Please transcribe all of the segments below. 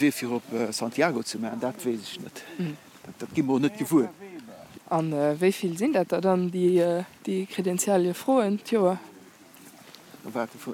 Wee fir op Santiago ze maachen, dat weess ech net. Dat gi mer och net gewuer. A wéi vill sinn dat der dann, déi Kredentialie froen d'Joer?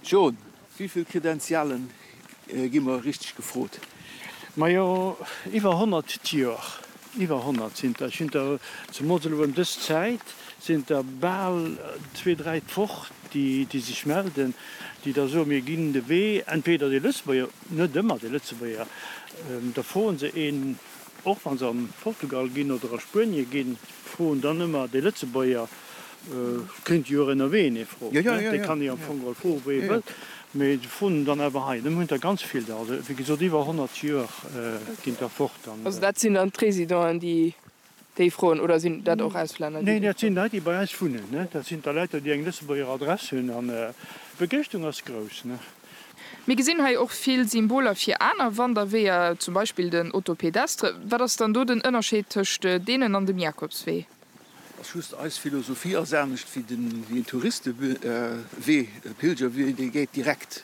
John, wéi vill Kredentialen gi mer richteg gefrot? Majo, iwwer honnert d'Joer. Iwwer honnert sinn der. Ech hunn der zemools elo ëm dës Zäit, sinn der bal zwee, dräi d'Woch, déi sech melden, déi da soen, mir ginn de Wee entweder de Lëtzebuerger Net ëmmer déi Lëtzebuerger. Da froen se een, och wa se a Portugal ginn oder a Spuenie ginn, froen dann ëmmer déi Lëtzebuerger. Et kéint ee jo och ënnerwee een ee froen. Dee kann ee am Fong geholl froen, wou ee wëllt. Mee se froen en dann awer hei. Dem hunn der ganz vill der. Also wéi gesot, iwwer 100 Joer ginn der fort. Also dat sinn dann d'Résidenten, déi Déi froen, oder sinn dat och Auslänner? Nee, dat sinn Leit, déi bei eis wunnen. Dat sinn d'Aleuter, déi eng Lëtzebuerger Adress hunn. An d'Begéischtung ass grouss. Mir gesinn hei och vill Symboler fir aner Wanderweeër, zum Beispill den Otto Pédestre. Wat ass dann do den Ënnerscheed tëscht deenen an dem Jakobswee? Dat ass just, eis Philosophie ass anescht wéi en Touristewee, e Pilgerwee, dee geet direkt.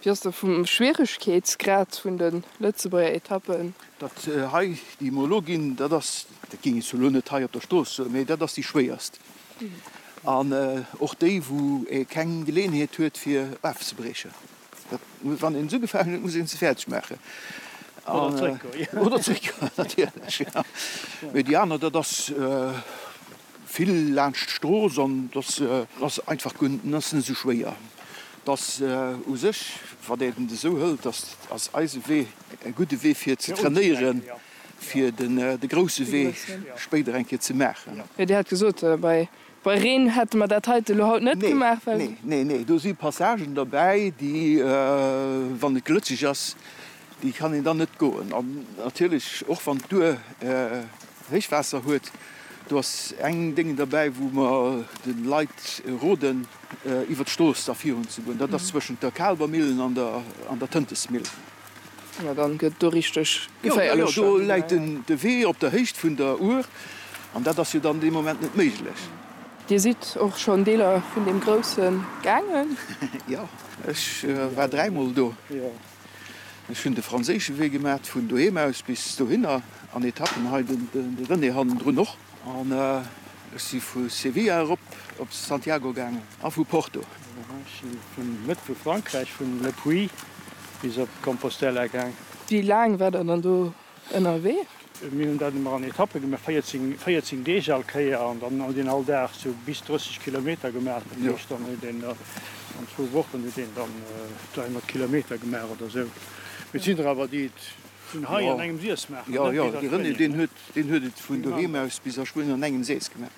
Wéi ass de vum Schwieregkeetsgrad vun de Lëtzebuerger Etappen? Dat hei, déi mer elo ginn, dat ass, dat ginn ech elo net hei op der Strooss soen, mee dat ass déi schwéierst an och déi, wou ee keng Geleeënheet huet, fir ofzebriechen. Dat, wann een se ugefaangen huet, muss een se fäerdeg maachen oder zréckgoen, natierlech, jo. Mee déi aner, dat ass. Vill laanscht d'Strooss an dass ass einfach guer net esou schwéier. Dass u sech, wann een et esou hëlt, dass ass eise Wee e gudde Wee fir ze trainéieren, fir de grousse Wee spéider eng Kéier ze maachen. Jo, Dir hat gesot, bei Reen hätte mer dat heite elo haut net gemaach, well. Nee, nee, nee, do si Passagen derbäi, déi, wann et glëtscheg ass, déi kann een dann net goen. An natierlech och wann d'Duer Réichwaasser huet. Do ass eng Déng derbäi, wou mer de Leit roden, iwwer d'Strooss da virun ze goen. Dat ass zwëschent der Kaalber Millen an der Tëntesmill. Jo, da gëtt et do richteg geféierlech. Jo, jo, do läit de Wee op der Héicht vun der Our an dat ass jo dann dee Moment net méiglech. Dir sidd och schonn Deeler vun deem Grousse gaangen? Jo, ech war dräimol do. Ech hunn de franséische Wee gemat, vun doheem aus bis dohinner, an Etappen hei, de René hannendrun och. An ech si vu Sevilla erop op Santiago gaangen a vu Porto. Ech si vun der Mëtt vu Frankräich, vun Le Puy bis op Compostela gaang. Wéi laang war der dann do? ënnerwee. Mir hunn dat ëmmer an Etappe gemaach, 14, 14 Deeg all Kéier, an dann huet een all Dag esou bis 30 Kilometer gemaach. Dat heescht, dann huet een da an zwou Wochen huet een dann 300 Kilometer gemaach oder esou. Mee et sinn der awer, déi et vun hei an engem Sis maachen. Jo, jo, de René, deen huet, deen huet et vun doheem aus bis a Schwéin an engem Sis gemaach.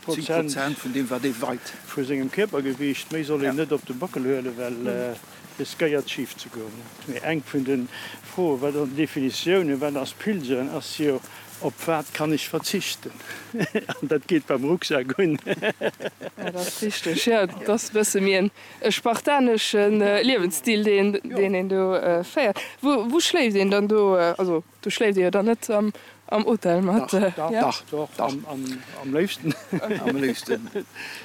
Prozent vu sengem Kierpergewiicht méi soll een net op de Bockel huelen, well riskéiert schif ze goen. Mee eng vun de Froe war dann d'Definitioun, wat ass Pilgeren? Ass jo op wat kann ech verzichten? An dat geet beim Rucksak un. Dat ass richteg, jo. Et ass e bësse méi e spartanesche Liewensstil, deen een do féiert. Wou schléift een dann do? Also Do schléift dir jo dann net am Hotel mat? Dach, dach, dach, dach, dach. Am léifsten. Am léifsten.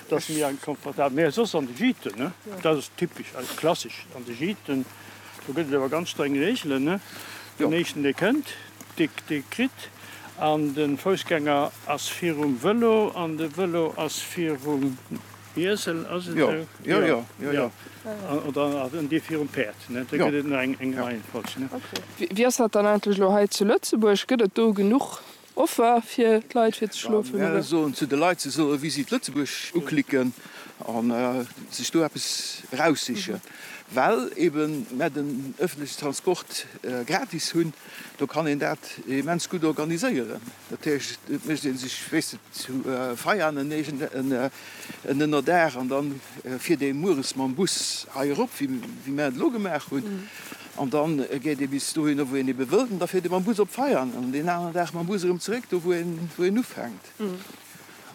Dat ass méi confortabel. Mee soss an de Gîten, ne? Jo. Dat ass typesch eis, klassesch. An de Gîten, do gëtt et awer ganz streng Reegelen, ne? Jo. Den éischten, dee kënnt, dee, dee kritt. An de Foussgänger ass virum Vëlo an de Vëlo ass virum. Iessel ass et esou? Jo, jo, jo, jo. Oder an dee virum Päerd, ne? Da gëtt et nach eng Reihenfolg, ne? Okay. Wéi ass dat dann eigentlech elo hei zu Lëtzebuerg? Gëtt et do genuch Offer fir d'Leit fir ze schlofen? Mir soen zu de Leit, se solle Visit Lëtzebuerg uklicken a sech do eppes eraussichen. Well eben mer den öffentliche Transport gratis hunn, do kann een dat immens gutt organiséieren. Dat heescht, et mécht ee sech, wéist de, zu Veianen eegent en Ënnerdaach an da fiert ee mueres mam Bus hei erop, wéi mär et elo gemaach hunn. An da geet ee bis dohinner, wou een ebe wëllt, an da fiert ee mam Bus op Veianen an deen aneren Dag mam Bus erëm zeréck do, wou een ufänkt.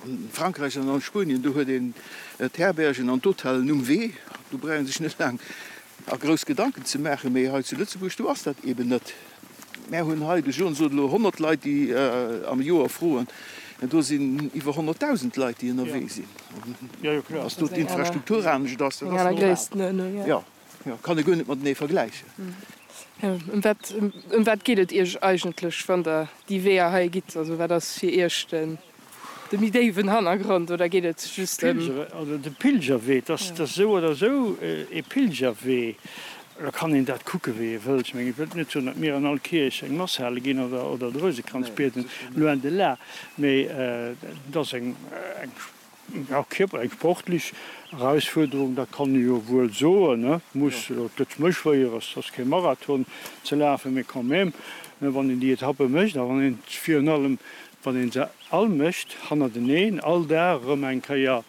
An Frankräich an a Spuenien, do huet een d'Herbergen an d'Hotellen um Wee, do brauch ee sech net laang a grouss Gedanken ze maachen. Mee hei zu Lëtzebuerg, do ass dat eeben net. Mär hunn hei de Jour, sot elo, 100 Leit, déi am Joer froen. Mä do sinn iwwer 100.000 Leit, déi ënnerwee sinn. Datt do d'Infrastruktur anescht ass, dat ass normal. Jo, jo, kann ee guer net matenee vergläichen. Ëm wat geet et Iech eigentlech, wann Der déi Weeër hei gitt? Also wat ass fir Iech de. De méi déiwen Hannergrond oder geet et just ëm. De Pilgerwee, dass et esou oder esou ee Pilgerwee, da kann een dat kucke wéi ee wëllt. Ech mengen, ech wëllt net soen, datt mir an all Kierch eng Mass hale ginn oder de Rousekranz bieden, loin de là, mä et ass eng kierperlech, eng sportlech Erausfuerderung, dat kann ee jo wuel soen. Et muss net méi schwéier, et ass kee Marathon ze lafen, mä quand même, wann een déi Etappe mécht a wann een virun allem Wann een se all mécht hannerteneen, all Dag erëm eng Kéier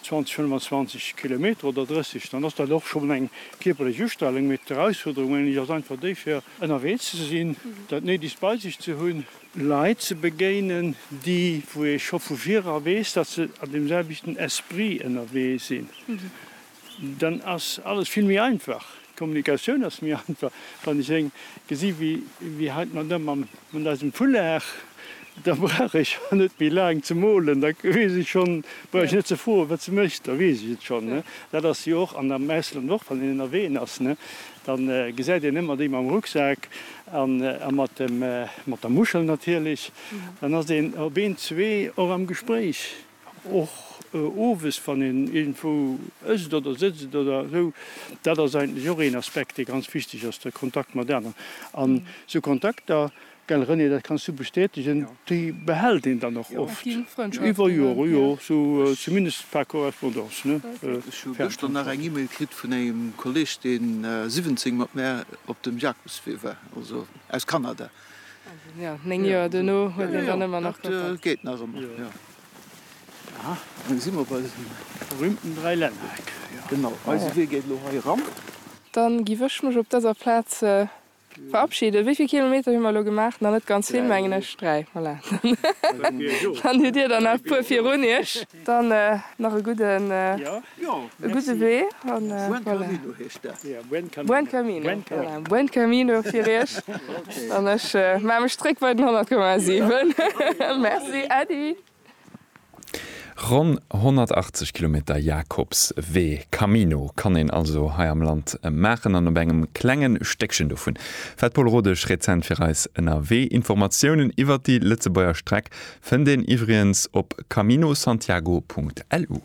20, 25 Kilometer oder 30, dann ass dat och schonn eng kierperlech Ustrelung. Mee d'Erausfuerderung, menge ech, ass einfach déi fir ënnerwee ze sinn, dat Néidegst bei sech ze hunn, Leit ze begéinen, déi, wou ee scho vu virdra weess, datt se an deem selwechten Esprit ënnerwee sinn. Dann ass alles vill méi einfach. D'Kommunikatioun ass méi einfach. Wann ech eng gesi wéi hei d'Madame mat eisem Foulard, da brauch ech jo net méi laang ze molen, da weess ech schonn, brauch ech net ze froen, wat se mécht, da weess ech et schonn. Dat ass jo och, an am Ausland och, wann een ënnerwee ass, da gesäit een ëmmer déi mam Rucksak a mat der Muschel natierlech, dann ass een op een, zwee och am Gespréich. Och owes, wann een iergendwou ësst oder sëtzt oder esou, dat ass eigentlech och een Aspekt, dee ganz wichteg ass, de Kontakt mat aneren. An esou Kontakter, gell René, dat kanns du bestätegen, déi behält een dann och oft iwwer Joren, jo, sou zumindest par correspondance. Ech hu gëschter nach eng E-Mail kritt vun engem Kolleg, dee 17 mat mär op dem Jacobswee war, also aus Kanada. Néng Joer duerno huet een dann ëmmer nach Kontakt. Dat geet nach ëmmer, jo. Aha, elo si mer bei dësem berühmten Dräilännereck. Genau, eise Wee geet elo hei eran. Dann giff ech mech op dëser Plaz verabschieden. Wéi vill Kilometer hu mer elo gemaach? Nach net ganz vill, mengen ech. Dräi, voilà. Dann hutt Dir der nach e puer virun Iech. Dann nach e gudden e gudde Wee an Buen Camino Buen Camino fir Iech an ech maache mech zréck bei den 100,7. Merci Äddi. Ronn 180 Kilometer Jakobswee, Camino, kann een also hei am Land maachen an op engem klenge Stéckchen dovun war d'Paule Rodesch rezent fir eis ënnerwee. Informatiounen iwwert déi Lëtzebuerger Streck Fënnt een iwwriens op caminosantiago.lu.